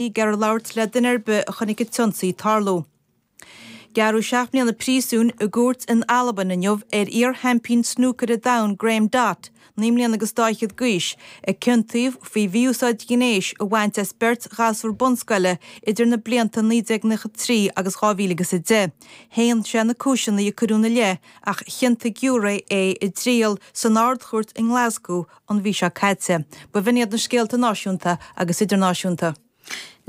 ag iarraidh labhairt le duine ar bith a chonaic an t-ionsaí ag tarlú. Gearradh seacht mbliana príosúin i gcúirt in Albain inniu ar iar-sheaimpín snúcaire domhain Graeme Dott, naoi mbliana agus dá fhichead d'aois, a ciontaíodh faoi mhí-úsáid ghnéis a bhaint as beirt ghasúr bunscoile idir na blianta 1993 agus 2010. Shéan sé na cúiseanna a cuireadh ina leith ach chiontaigh giúiré é i dtriail san Ard-Chúirt i nGlascú an mhí seo caite. B'in iad na scéalta náisiúnta agus idirnáisiúnta.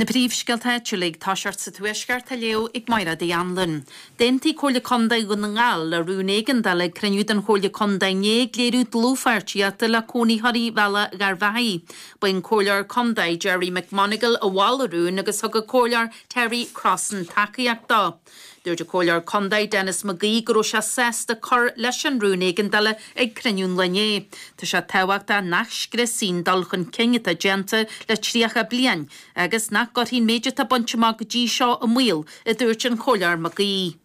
Na príomhscéalta áitiúla, ag tosacht sa Tuaisceart, á léamh ag Máiréad Uí Annluain. D'aontaigh Comhairle Contae Dhún na nGall le rún éigeandála ag cruinniú den Chomhairle Contae inné ag léiriú dlúthpháirtíochta le cónaitheoirí Bhealach Gharbhachaidh. Ba é an Comhairleoir Contae Gerry McMonagle a mhol an rún agus thug an Comhairleoir Terry Crossan tacaíocht dó. Dúirt an Comhairleoir Contae, Denis McGee, go raibh sé sásta cur leis an rún éigeandála ag cruinniú an lae inné. Tá sé tábhachtach nach scriosfaí an dul chun cinn atá déanta le 30 bliain agus nach gcuirfí an méid atá bainte amach go dtí seo i mbaol, a dúirt an Comhairleoir McGee.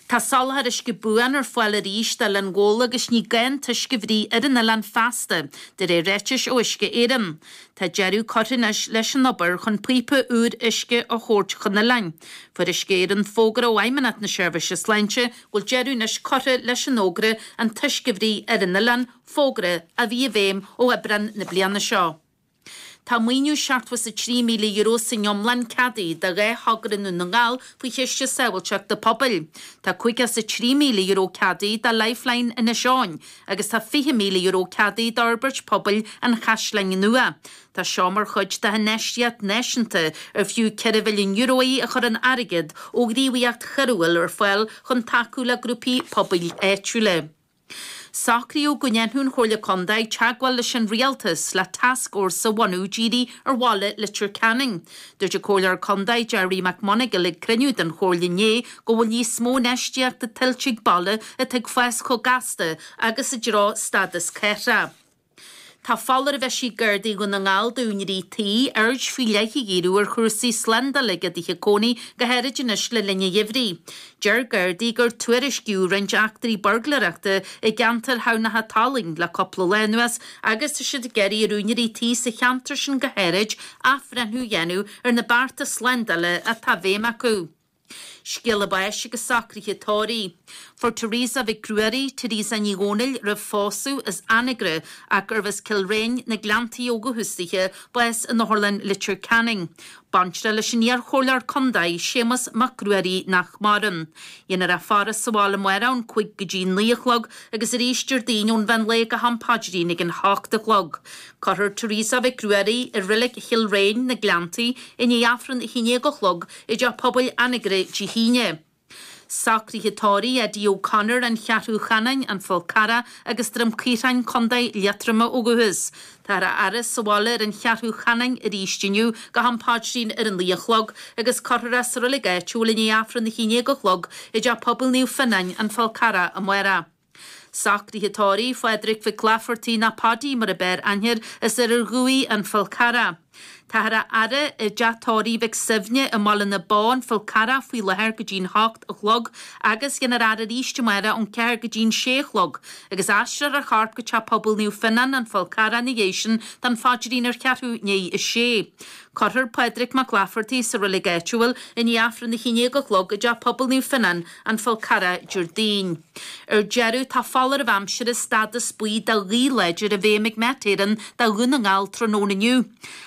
Tá soláthar uisce buan ar fáil arís d'Oileán Ghabhla agus ní gá an t-uisce a bhruith ar an oileán feasta, de réir ráitis ó Uisce Éireann. Tá deireadh curtha anois leis an obair chun píopa úr uisce a thabhairt chun an oileáin. Fuair Uisce Éireann fógra ó Fheidhmeannacht na Seirbhíse Sláinte go bhfuil deireadh anois curtha leis an fhógra an t-uisce a bhruith ar an oileán, fógra a bhí i bhfeidhm ó Aibreán na bliana seo. Tá maoiniú €73,000 san iomlán ceadaithe do dhá thogra i nDún na nGall faoi Chiste Sábháilteachta Pobail. Tá €53,000 ceadaithe do Lifeline Inis Eoghain, agus tá €20,000 ceadaithe d'fhorbairt pobail an Chaisleáin Nua. Tá seo mar chuid de infheistíocht náisiúnta ar fiú €4 mhilliún í a chuireann airgead ó ghníomhaíocht choiriúil ar fáil chun tacú le grúpaí pobail áitiúla. Socraíodh go ndéanfadh an Chomhairle Contae teagmháil leis an Rialtas le tascfhórsa a bhunú dírithe ar bhaile Leitir Ceanainn. Dúirt an Comhairleoir Contae Gerry McMonagle ag cruinniú den Chomhairle inné go bhfuil níos mó infheistíochta tuillte ag baile atá ag fás chomh gasta agus i dtreo stádas cathrach. Tá foláireamh eisithe ag Gardaí Dhún na nGall d'úinéirí tí aird faoi leith a dhíriú ar chúrsaí slándála ag a dtithe cónaí go háirid anois le linn an gheimhridh. Deir Gardaí gur tuairiscíodh roinnt eachtraí burglaireachta i gceantar Thamhnach an tSalainn le cúpla lá anuas agus tá siad ag iarraidh ar úinéirí tí sa cheantar sin go háirid athbhreithniú a dhéanamh ar na bearta slándála atá i bhfeidhm acu. Scéala báis agus socraithe tórraimh. Fuair Teresa Mhic Ruairí, Teresa Ní Dhomhnaill roimh phósadh, as Anagaire ach gurbh as Cill Riáin, na Gleanntaí ó thús daoithe, bás in Otharlann Leitir Ceanainn. Baintreach leis an iar-chomhairleoir contae, Séamus Mac Ruairí, nach maireann. Déanfar a faire sa bhaile amárach ón cúig go dtí naoi a chlog agus arís Déardaoin ón mheán lae go ham paidrín ag an hocht a chlog. Cuirfear Teresa Mhic Ruairí i Reilig Chill Riáin, na Gleanntaí, i ndiaidh Aifreann a haon déag a chlog i dTeach Pobail Anagaire Dé hAoine. Socruithe tórraimh Eddie O'Connor an Cheathrú Cheanainn, An Fál Carrach agus Droim Caorthainn, Co. Liatroma ó dhúchas. Táthar á fhaire sa bhaile ar an Cheathrú Cheanainn arís inniu go ham paidrín ar an naoi a chlog agus cuirfear é sa reilig áitiúil i ndiaidh Aifreann na haon déag a chlog i dteach pobail Naomh Fionnán, An Fál Carrach, amárach. Socruithe tórraimh Phádraig Mhic Laifeartaigh nó Paudie mar ab fhearr aithne air as Oirear Dhumhaí an Fál Carrach. Táthar á fhaire i dteach tórraimh Mhic Suibhne i mBaile na Bó an Fál Carrach faoi láthair go dtí'n h-ocht a chlog agus déanfar a fhaire arís amáireach ón ceathair go dtí'n sé a chlog agus aistreofar a chorp go Teach Pobail Naomh Fionnán an Fál Carrach ina dhiaidh sin don phaidrín ar cheathrú i ndiaidh a sé. Cuirfear Pádraig Mac Laifeartaigh sa reilig áitiúil i ndiaidh Aifreann a haon déag a chlog i dTeach Pobail Naomh Fionnán an Fál Carrach Déardaoin. Ar deireadh, tá foláireamh aimsire stádas buí do ghaoth láidir i bhfeidhm ag Met Éireann do Dhún na nGall tráthnóna inniu.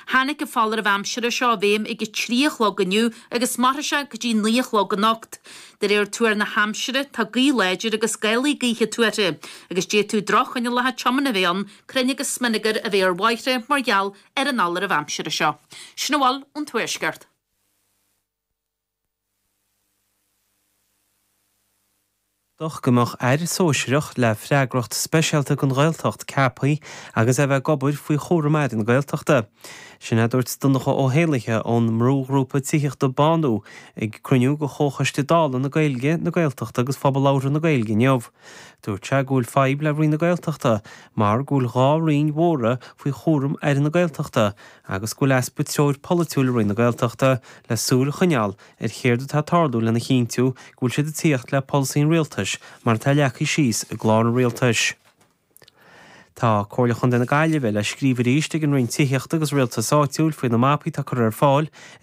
Tháinig an foláireamh aimsire seo i bhfeidhm ag 3 a chlog inniu agus mairfidh sé go dtí 9 a chlog anocht. De réir tuar na haimsire, tá gaoth láidir agus gálaí gaoithe tuartha agus d'fhéadfadh droch-choinníollacha tiomána a bheith ann, crainn agus smionagar a bheith ar bhóithre mar gheall ar an fholáireamh aimsire seo. Sin a bhfuil ón Tuaisceart. D'fhéadfadh go mbeadh Aire Sóisireach le freagracht speisialta don Ghaeltacht ceapthaí agus é bheith ag obair faoi chúram Aire na Gaeltachta. Sin é a dúirt Donncha Ó hÉallaithe ón mbrúghrúpa tithíochta Bánú ag cruinniú de Chomhchoiste Dála na Gaeilge, na Gaeltachta agus Phobal Labhartha na Gaeilge inniu. Dúirt sé go bhfuil fadhb le Roinn na Gaeltachta mar go bhfuil dhá Roinn mhóra faoi chúram Aire na Gaeltachta agus go bhfuil easpa treoir pholaitiúil i Roinn na Gaeltachta le súil a choinneáil ar chéard atá ag tarlú lena chinntiú go bhfuil siad ag tíocht le polasaí an Rialtais mar atá leagtha síos i gClár an Rialtais. Tá Comhairle Chontae na Gaillimhe le scríobh arís ag an Roinn Tithíochta agus Rialtais Áitiúil faoi na mapaí atá curtha ar fáil ag